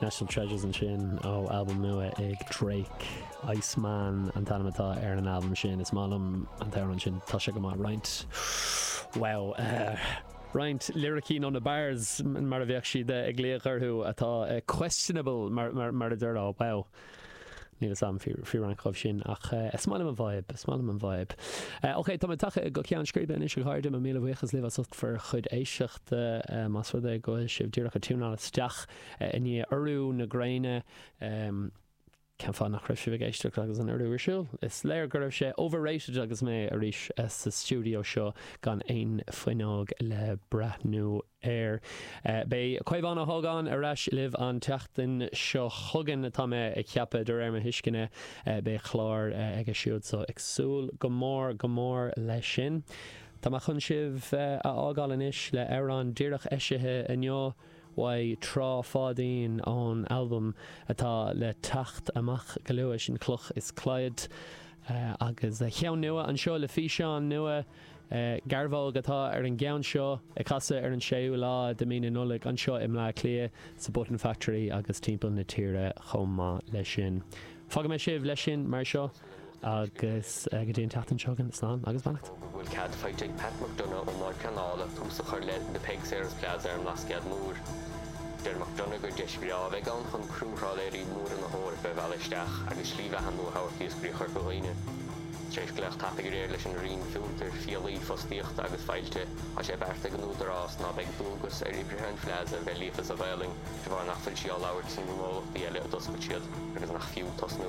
National Treasures ansin ó albam nua ag Drake. Iceman an t-ainm atá ar an albam sin. Is maith liom an t-amhrán sin. Tá sé go maith. Roinnt, bhuel, roinnt liricí nó na bars mar a bheadh siad ag glaoch orthu atá questionable mar a déarfá, bhuel. Níl fhios a'm faoi roinnt dhíobh sin ach eh is maith liom an vibe, is maith liom an vibe. Eh ok tá mé tagtha go ceann scríbe anois a chairde, mo mhíle buíochas libh as ucht bhur chuid éisteachta. Eh más rud é go bhfuil sibh díreach a' tiúnáil isteach eh i ndiaidh urú na gréine ehm cén fáth nach raibh sibh ag éisteacht agus an urú ar siúl? Is léir go raibh sé overrated agus mé arís sa stiúideo seo gan aon fuinneog le breathnú air. Beidh Caomhán Ó hÓgáin ar ais libh an tseachtain seo chugainn, tá mé ag ceapadh, de réir mo thuisceana. Beidh clár aige siúd, so ag súil go mór, go mór leis sin. Tá mé chun sibh a fhágáil anois le amhrán díreach eisithe inniu uaidh Trá Pháidín ón albam atá le teacht amach go luath, sin Cloch is Claí. Agus an ceann nua anseo le físeán nua. Garbhóg atá ar an gceann seo, ag casadh ar an 6ú lá de mí na Nollag anseo i mBleá Cliath, sa Button Factory agus timpeall na tíre chomh maith leis sin. Fágfaidh mé sibh leis sin mar seo agus go dtí an tseachtain seo chugainn, slán agus beannacht. An bhfuil cead faighte ag Pat McDonagh ón mBord Pleanála tús a chur le The Peig Sayers Plaza ar an mBlascaod Mór? Deir McDonagh gur deis bhreá a bheidh ann chun trálaeirí móra na hEorpa a mhealladh isteach agus slí bheatha nua a thabhairt d'iascairí Chorca Dhuibhne. Tar éis glaoch tapaidh aréir leis an Roinn Fiontair, Fiailí, Fostaíochta agus Fáilte. Tá sé beartaithe ag an Údarás ná beidh dualgas ar oibrithe an Phlaza a bheith líofa sa Ghaelainn de bharr nach bhfuil sí á labhairt sna gnólachtaí eile a d'oscail siad agus nach fiú tosnú